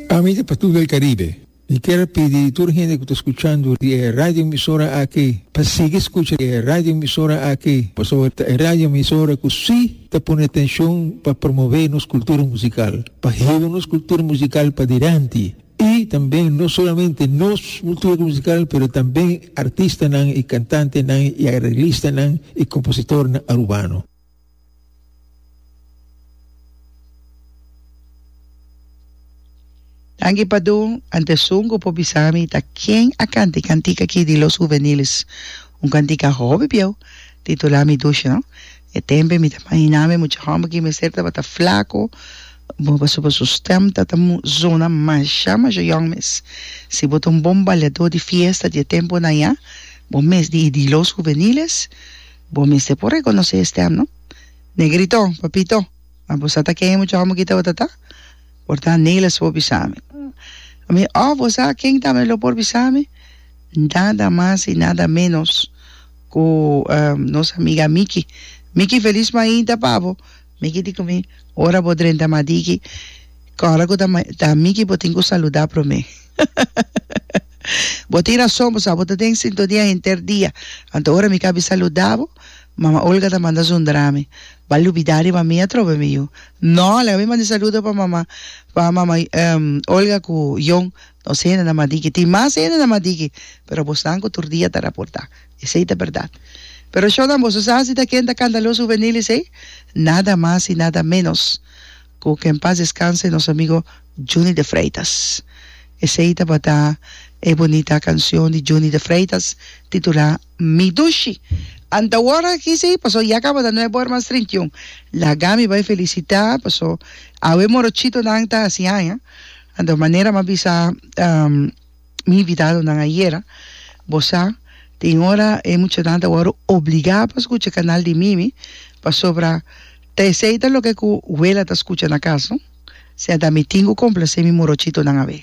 Pamedi pa tur el Caribe, mi kier pidi tur hende ku ta skuchando di e radioemisora aki pa sigui skucha di e radioemisora aki pasobra ta e radioemisora ku si ta pone atenshon pa promové nos kultura musikal, pa hiba nos kultura musikal padilanti i tambe no solamente nos kultura musikal pero tambe artistanan i kantantenan i areglistanan i kompositornan Arubano. Danki Padu, antesun ku por bisa mi ta ken a kanta e kantika aki di Los Juveniles, un kantika hopi bieu, titulá Mi Dusha. No e tempe mi ta imaginá mi mucha hòmber ki mester tabata flaku pasobra su stèm ta ta sona masha masha yòn mes. Si bo ta un bon baleadó di fiesta di e tempunan ya, bo mes di i di Los Juveniles. Bo mester por rekonosé e stèm, no? Negrito, papito, a bo sa ta ken e muchòkon bo kita bo ta ta? Por ta Nelis por bisa mi. Mi, Òf bo sa ken ta mi lo por bisa mi? Nada mas i nada ménos ku nos amiga Miki. Miki, felis mainta pa bo. Miki di ku mi, ora bo drenta madiki, kòrda ku ta ta mi ki bo tin ku saludá promé. Bo tin rason, bo sa bo ta den sintonia henter dia, anto ora mi ka bi saludá bo, Mama Olga ta manda zundra mi, Bal lubidá riba mi atrobe mi yu. Nò, laga mi manda e saludo pa Mama pa Mama Olga ku Yon. Nos hendenan madigi. Tin mas hendenan madigi, pero bosnan cu tur dia ta raporta. Esey ta berdad. Pero shonan, boso sa si ta ken ta candaloso hubenil esey? Nada mas y nada menos cu que en paz descanse nos amigo Juny de Freitas. Esey tabata e bunita cancion di Juny de Freitas titula. Mi dushi. Anta wòrda aki si, paso ya kabada nuevo hermans treinta i un. Laga mi bai felisitá, paso awe morochitonan ta hasi haña. Anto manera mi a bisa mi invitadonan ayera, bo sa, tin ora e muchanan ta wòrdu obligá pa skucha kanal di Mimi, pasobra ta esei ta loke ku Wela ta skucha na kas, no? Siña ta mi tin ku komplasé mi morochitonan awe.